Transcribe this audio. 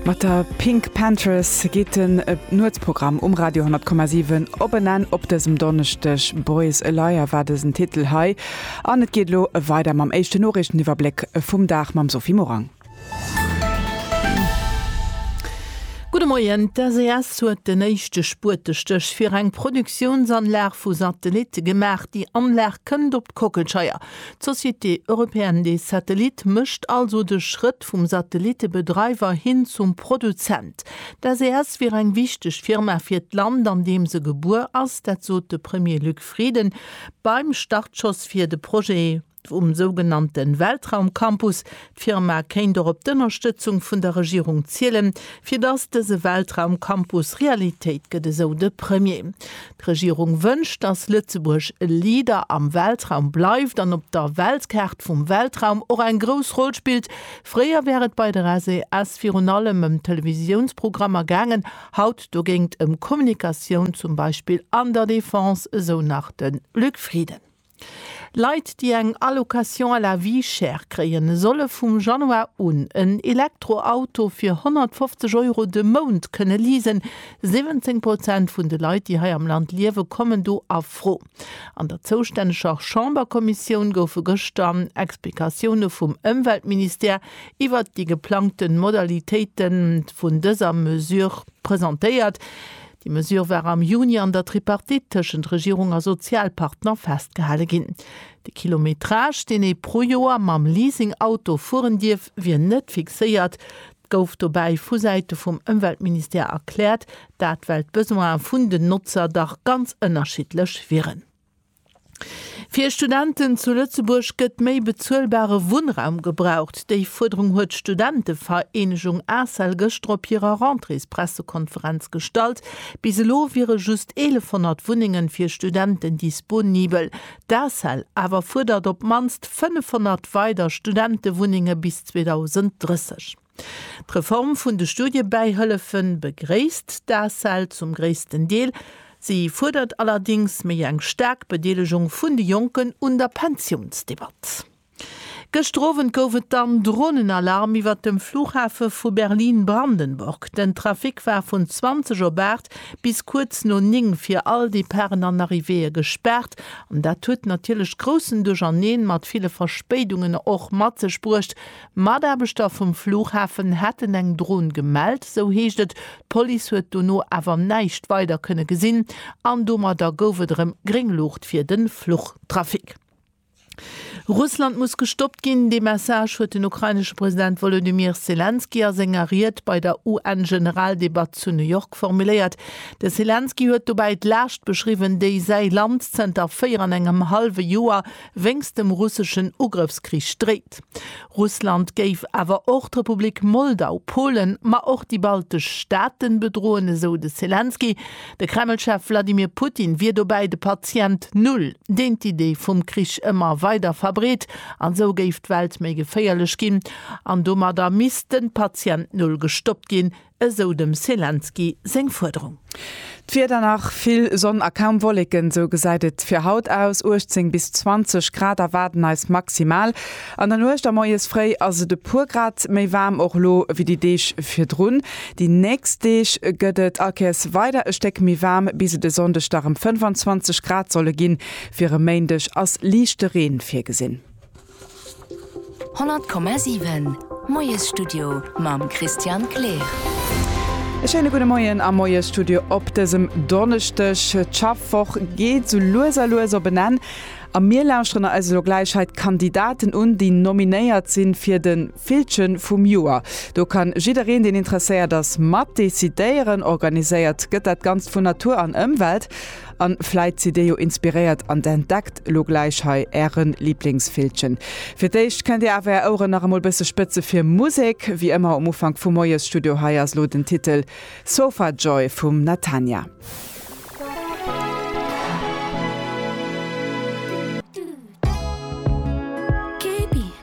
Mat der Pink Panthers geet den Nuetsprogramm um Radio 10,7 op en Enn op dësem Donneschdeg. Boys a Liar war dësen Titel hei an et geet elo weider mam éischten Noriichteniwwerbléck vum Dag mam Sophie Morang. Gudde Moien, D'SES huet den éischte Spuetestéch fir eng Produktiounsanlag vu Satellitte gemaach. Déi Anlag kënnt op d'Kockelscheier. D'Société Européenne des Satellites mécht also de Schrëtt, Geschäft vum Satellittebedreiwer hin zum Produzent. D'SES wier eng wichteg Firma fir d'Land, an deem se gebuer ass. Dat sot de Premier Luc Frieden beim Startschoss fir de Projet vum sougenannte Weltraumcampus. D'Firma kéint och op d'Ënnerstëtzung vun der Regierung zielen, fir datt dëse Weltraumcampus Realitéit gëtt, esou de Premier. D'Regierung wënscht, dass Lëtzebuerg e Leader am Weltraum bleift an op der Weltkaart vum Weltraum och eng grouss Roll spillt. Fréier war et bei der SES virun allem ëm Televisiounsprogrammer gaangen, haut dogéint ëm Kommunikatioun, zum Beispill an der Defense, esou nach de Luc Frieden. Leit, déi eng Allocation à la vie chère kréien, solle vum Januar un en Elektroauto fir 150 Euro de Mount kënne leasen. 17 Prozent vun de Leit, déi hei am Land liewe kommen do a Fro. An der zoustänneger Chamberkommissioun goufe gëschter Explikatioune vum Ëmweltministère iwwert déi geplangte Modalitéite vun dëser Mesure presentéiert. Déi Mesure war am Juni an der Tripartite tëschent Regierung a Sozialpartner festgehale ginn. De Kilometrage, deen ee pro Joer mam Leasing-Auto fueren dierf, wier net fixéiert. Dat gouf dobäi vu Säite vum Ëmweltministère erkläert, dat well d'Besoine vun den Notzer dach ganz ënnerschiddlech wieren. Fir Studenten zu Lëtzebuerg gëtt méi bezuelbare Wunnraum gebraucht. Déi Fuerderung huet d'Studentevereenegung Asel gëschter op hirer Rentréespressekonferenz gestallt. Bis elo wiere just 1.100 Wunnenge fir Studenten disponibel. D'Asel awer fuerdert op d'mannst 500 weider Studentewunnenge bis 2030. D'Reform vun de Studiebäihëllefe begréisst d'ACEL zum gréissten Deel. Si fuerdert allerdéngs méi eng staark Bedeelegung vun de Jonken un der Pensiounsdebatt. Gëschter Owend gouf et dann Dronenalarm iwwert dem Flughafe vu Berlin-Brandenburg. Den Trafic war vun 20 op 8 bis kuerz no 9 fir all Departen an Arrivéeë gespaart an dat huet natierlech groussen Duercherneen mat ville Verspéidungen och mat sech bruecht, Mataarbechter vum Flughafen hätten eng Dron gemellt, sou heescht et. D'Police huet dono awer näischt weider kënne gesinn an domadder gouf et erëm gréng Luucht fir de Fluchtrafic. Russland muss gestoppt ginn, dee Message huet den ukrainesche President Wolodymyr Selenskyj a senger Ried bei der UN-Generaldebatt zu New York formuléiert. De Selenskyj huet dobäi d'Laascht beschriwwen, déi säi Land zënter véier an engem hallwe Joer wéinst dem russeschen Ugrëffskrich dréit. Russland géif awer och d'Republik Moldau, Polen, ma och déi baltesch Staaten bedroen, esou de Selenskyj. De Kreml-Chef Wladimir Putin wier dobäi de Patient Null, deen d'Idee vum Krich ëmmer weider verbreet, an esou géif d'Welt méi geféierlech ginn an domadder misst de Patient Null gestoppt ginn, esou dem Selenskyj seng Fuerderung. D'Wieder nach vill Sonn a kaum Wolleken, sou gesäit et fir haut aus. 18 bis 20 Grad erwaarden eis maximal an der Nuecht a moies fréi ass et e puer Grad méi waarm och elo wéi déi Deeg virdrun. Déi nächst Deeg gëtt et akeers weider e Stéck méi waarm, bis et e Sonndeg da rem 25 Grad solle ginn. Fir e Méindeg ass liichte Reen virgesinn. 100,7 Moiesstudio mam Christian Kleer. E schéine gudde Moien am Moiesstudio op dësem Donneschdeg. D'Schaffwoch geet sou lues a lues op en Enn a mir lauschteren eis elo gläich hei d'Kandidaten un, déi nominéiert sinn fir de Villche vum Joer. Do ka jiddereen, deen interesséiert ass, mat decidéieren. Organiséiert gëtt dat Ganzt vun Natur an Ëmwelt. An vläit sidd dir jo inspiréiert an entdeckt lo gläich hei ären Lieblingsvillchen. Fir d'éischt kënnt dir awer är Oueren nach emol bësse spëtze fir Musek, wéi ëmmer um Ufank vum Moiesstudio. Hei ass lo den Titel Sofa Joy vum Natania.